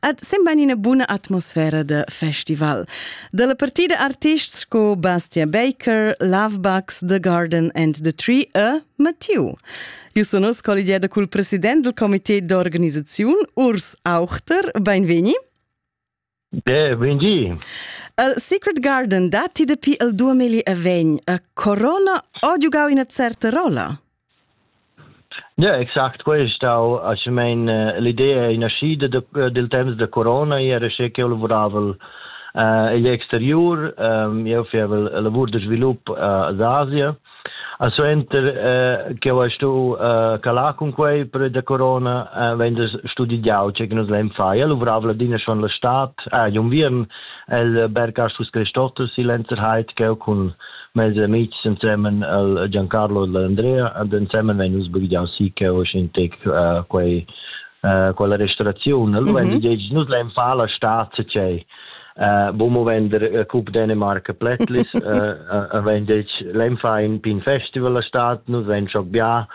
Ed semban ina buna atmosfera da festival. Da la partida artists sco Bastia Baker, Lovebug's, The Garden and the Tree e Mathieu. Eu sun uss colligiada cul president del comité d'organisaziun, Urs Auchter. Beinvegni. Beh, bengi. Il Secret Garden datti dapi il 2020 e Corona ha giugau ina certa rolla. Ja, exact quei ei stau aschumein l'idea ei naschida da, dil temps da corona, io era sche ch'jeu lavuravel eh, igl exteriur, jeu fievel lavur da svilup ad Asia. A suenter eh, che ho stu eh, calar cun quei per da corona, eh, vegn da studigiau che nus lein fai. Io lavoravel adina schon la stat, ah, un viern el Bergkastus Christotus in Lenzerheit, cheu cun Mes amitgs ensemen al Giancarlo e l'Andrea ed ensemen vein nus bugiau si che osin tec uh, quei uh, quella restoraziun. Allora mm -hmm. nus lein far la stad tgei Uh, bo mo vender uh, Cup Dänemark Plätlis uh, wenn lein fa in pin festival la stad nus vein schon bia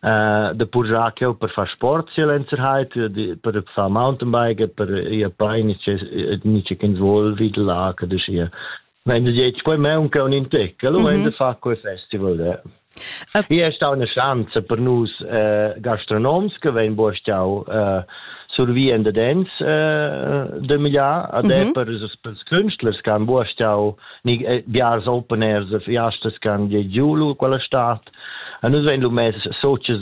uh, de purjacchio per far sport sia lenzerheit per far mountainbike per ihr bein ist nicht ins wohl wie la de Wenn du jetzt quei maunca un in tec, allora mm -hmm. in de fa quei festival. Ja. Io è stata una chance per noi eh, gastronoms che vengono buostau eh, survivendo dens eh, de miglià ad è mhm. per per künstlers che han buostau ni eh, biars open airs, fiastas che han di giulu quella stat A nus vegn lu mess socias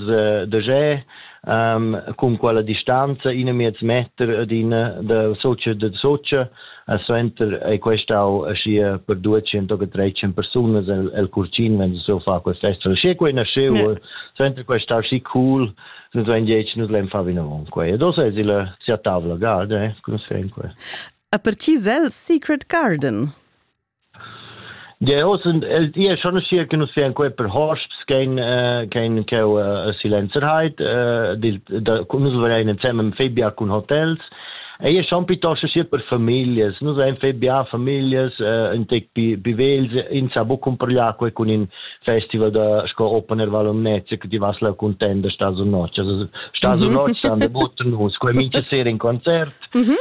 da jeu um, cun quella distanza in e miez meter d'in da socia da socia e suenter ei questau aschia per 200 o 300 persunas el, el curcin wenn so fa quel festival sche quei nasceu yeah. suenter questau schi cool nus vein dieci nus lein far vinavon quei e do se il sia tavla garda eh, cum se quei a per ci zel secret garden Jeu oz und el ia schon schia che nus vean quei per hosps kein äh, kein cheu äh, silencerheit äh, dil da, nus verein ensemble im Febia cun hotels ei è schon piuttosto sia per familias nus ein febia familias äh, in tec pi pi vels in sa bu cumprlia quei cun in festival da sco open air valomnezia che ti vas la contenda sta su notg also sta su notg sta de butten nus quei mincha sera in concert mm -hmm.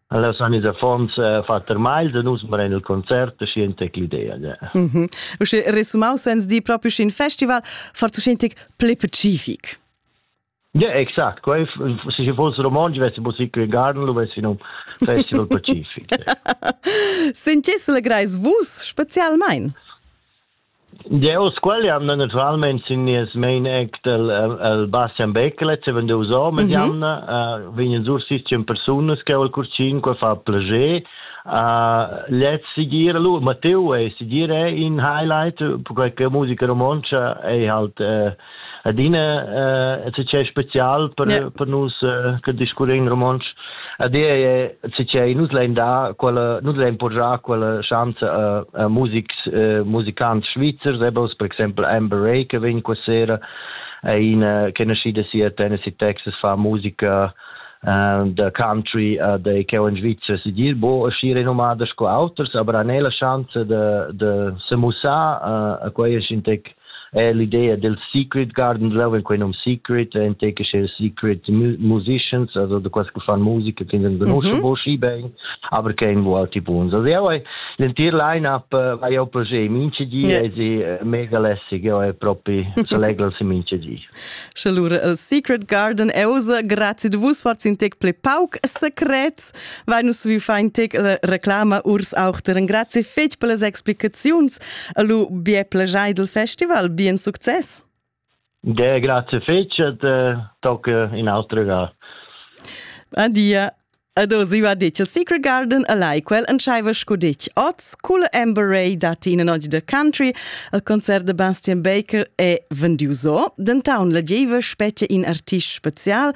Allas han ils affons eh, fatg termagl da nus meren il concert e scien tec l'idea. Mm -hmm. Usche resumaus sens di proprio scin festival, far tu scin ple pacific. Ja, exakt. Quei se ci fosse romanzo avesse musica e garden lo avesse in un festival pacific. Sentisse legrais vus specialmein? Dieus qualian naturalmein sin nies mein act el, el Bastian Beckelet, seven deus hom ed jamna, uh, vegnan sur sistem persunas che ol curcin, qua fa plager, uh, let's sigir, lu, Matteo è sigir è in highlight, perché che musica romontsch è halt uh, adina uh, eh, è special per, yeah. per nus uh, che discurre in romontsch adina è è nus lein da quella nus lein porgiare quella chance a, a musics uh, musicanti svizzers ebos per esempio Amber Ray che vegn questa sera è una che nascida sia a Tennessee Texas fa musica uh, da country uh, de cheu in Svizzera si dir bo schiere nomada sco auters aber anela chance de de se musa uh, a quei sintec eh, l'idea del secret garden love quei num secret entec che secret musicians also de quas che fan musica finden benusche mhm. voci ben aber kein wo alti buns also ja vai l'entir line up vai uh, au projet mince di yeah. è eh, mega lässig ja è proprio se legel si mince di Schelure, el secret garden euse grazie de vus far in tec ple pauc secret Vai nus vi fein tec reclama urs auch der grazie fetg per las explicaziuns a lu bien plagiai del festival, bien success. De grazie fetg et tocca in austro gar. Adia. Ado ziva dic a Secret Garden a Laikwell en schaiva scu dic oz, cul Amber Ray dat in noc de country, al concert de Bastian Baker e vendiuso, den town la gieva specie in artist spezial,